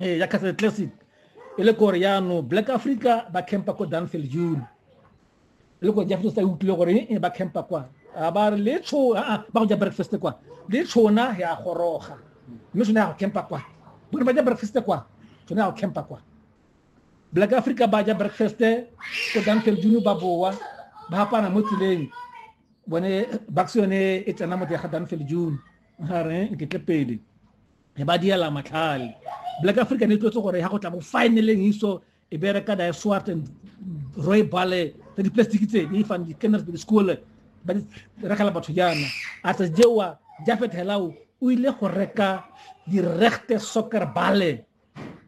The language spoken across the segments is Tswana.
ee ya castle classic e le gore yaanong black africa ba campa ko danfield june e le gore jafeto sa e utlwile gore e ba campa kwa a ba re le tsho a ba go ja breakfast kwa le tshona ya goroga mme sone ya go campa kwa bone ba ja breakfast kwa sone ya go campa kwa black africa ba ja breakfast ko danfield june ba boa ba hapana mo tseleng bone bax yone e tsena mo teng ga danfield june ga re ke tle pele e ba diela matlhale black african e tlotse gore ya go tla mo finaleng iso e bereka da swart and roy bale tsa diplastic tse di fan di kenners by school ba di rekala batho jana a tsa jewa jafet helao o ile go reka di rechte soccer bale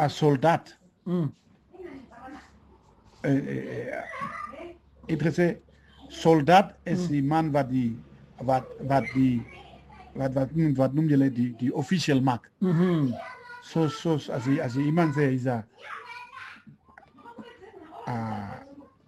a soldat mm. eh, eh, eh, ich trese soldat es mm. man wat die wat wat die wat wat nun wat nun die die, die official mark mm -hmm. so so also also jemand sehr ist a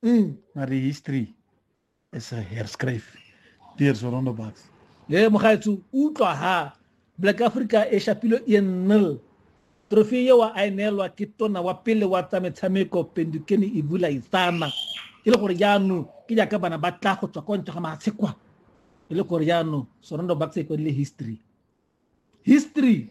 Mm. Maar die history is herschreven. Deur so rondebaas. Nee, maar ga toe utlwa ha Black Africa e shapilo 1-0. Trofee eo a e neelwa ke tona wa pele wa tsa metshameko Pendukeni Ivula Isana. E le gore jaanong ke jaaka bana ba tla go tswa kwa ntle ga matshe kwa. E le gore jaanong Sorondo Bucks e kwadile history. History